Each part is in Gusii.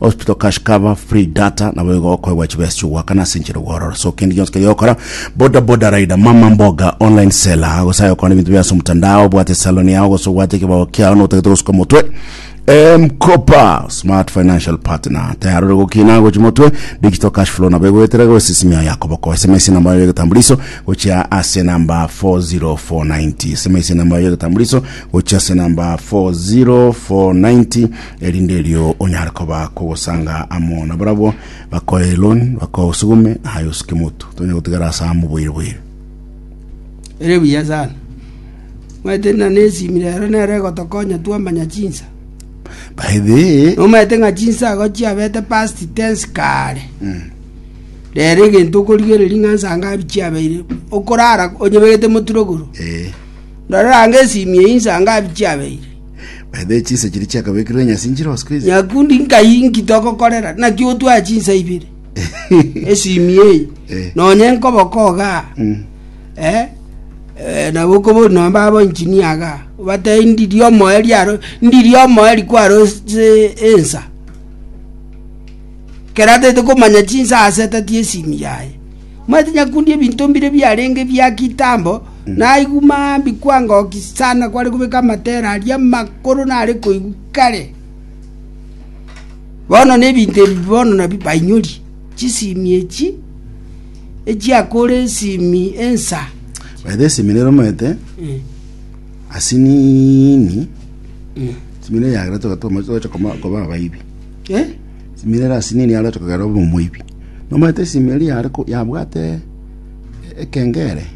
hospital cash cover free data nabo igo okoegwa chibesa chi'ogoakana ase enchera ogworora so kende gionsi keria ogokora boda boda rider mama mboga online seller gose aye okore ebinto bia ase omotandao obwate salon yao gose obwate ekebao kiao notagete gosuka omotwe mkopa smart financial partner tayari ore gokina gochi motwe digital cash flow nabo egoetera goise simi yao yakoboko sms namba yao yegetambuliso gochia ase namba 40490 sms namba yao yegetambuliso gochia ase namba 40490 erinde erio onyare koba kogosanga amo na barabwo bakoe loan bakoe osigume aye osike motu tonya gotigara ase amo boire boire Ere buya sana. Omanyete na nesimu rero nero egotokonya twamanya chinsa. by the way Omanyete ng'a chinsa ago chiabete past tense kare. Rero egento okorigereria ng'a nsanga abi chiabeire. Okorara onyeberete moturogoro. eh, Ndorera ange esimu eye nsanga abi chiabeire. By the way, chinsa chiria chiakabekirwe nyasi nchire botuko ase. Nyakundi nkai nki togokorera? Naki otwae chinsa ibere. Esimi eye. Eh. Nonye nkoboko ogaa. Mm. Eh? Eh, nabo okobori nonye babo engineer agaa. Obatei ndiri omoe riaro, ndiri omoe rikwaro ase ensa. Kera ataete komanya chinsa aseteti esimi yaye. Momanyete nyakundi ebinto mbire biarenge bia kitambo, naigwa mambia kwangokia sana kware kobeka amatera aria amakoro nare koigwa kare. Bono nebinto ebi bono nabio bainyori, chisimi echi echiakore esimi ensa. By the simi rero omanyete Mm. asinini simire yagera togatoma togacha koma- koba abaibi Eh? Simire lasini niye arete kogera obe omoibi. Nomanyete esimeri yare ko- yabwate e- ekengere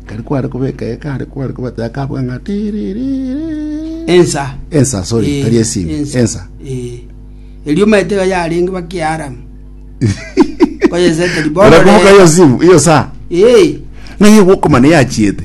kari kware kobeka eye kare kware kobataya kabwa ng'a tiririri ensa ensa sorry Eh, tari esimi ensa Eh. erio omanyete iga yarenge bakiaramu koyeseteri Ora kumbuka hiyo simu hiyo saa Eh, ng'a iye gwokomana yachiete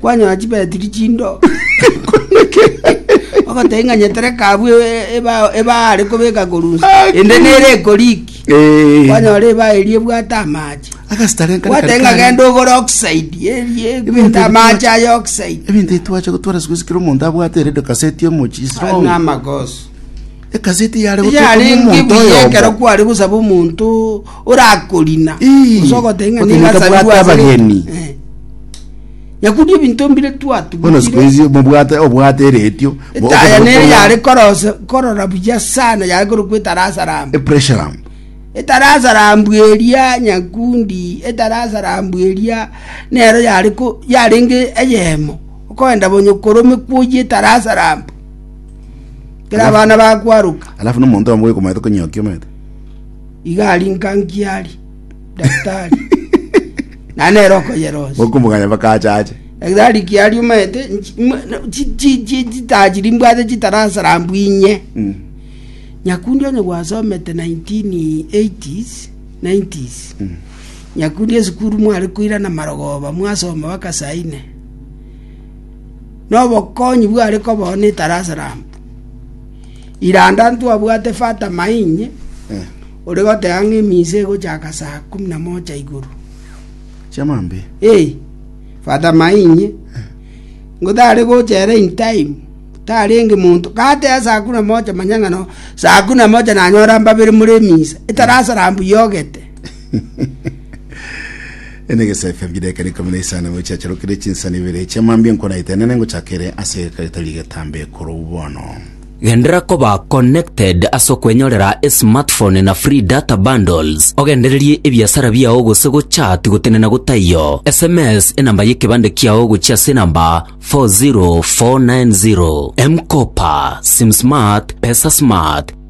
Kwanyora chibetiri chindo, ogotebi ng'a nyetereka abwo e- ebao ebao are kobeka korunsa, Aki. ende nere ekoriki. Eh. Kwanyora ebao eria ebwate amache. Agasitare nkare Gwate kare ng'a kare. genda ogore oxide, erie Ebinto egwete amache aye oxide. Ebinto etwache gotwara siku sikira omonto abwate erede kaseti omochi strong. N'amagoso. Egazeti eyare gotoka Eyarenge omonto buya oyomo. ekero kware gosaba omonto orakorina Ii, gose ogoteba ng'a omonto nigasabirwe abwate ase reta. abageni. Eh. Nyakundi ebinto mbire Bono siku twatugutire hizi mobwate obwate eretio. bo- etaya okoro- nere okoro- yare korose- korora buya sana yare korokwa etarasa ramba Epressure lamp. etarasa rambu eria nyakundi etarasa rambu eria nero yare ko- yarenge eyemo okoenda bonye korome kwoyia etarasa rambu Kera abana bakwaruka. alafu nomonto oyomo bwekomanyete konyokia omanyete Iga ari nkankiari. Daktari. Na nero okoyerosia. bokomoganya mpaka ache ache Daktari kiari omanyete nchi- mwa- na- chi- chi- chi- chitajiri mbwate chitarasara mbwinye. Mm. Nyakundi onye gwasomete 1980s 90s nyakundi esukuru mware koirana marogoba mwasoma baka saine nobokonyi bware kobao ne Darasalamu. Iranda ntwabwate Fata Mainye ore goteba ng'a emisa egochaka saa kumi na mocha igoro. Chiamambia. Ee, Fata Mainye ngo tare gochera in time tarenge monto gateba saa kumi na mocha manya ng'a no saa kumi na mocha nanyora mbabere more emisa etarasara mbu yogete Ende gesafe bideka rikumi na isano ngo chiacharukire chinsani ibere chia mambia nkonaite nene ngochakere ase egetari getambe korou bono. Genderera koba connected ase okwenyorera esmartphone na free data bundles, ogendererie ebiasara biao gose gochat gotenena gotaiyo. SMS enamba yekebande kiao gochia ase enamba 40490. M-Kopa, SimSmart, PesaSmart.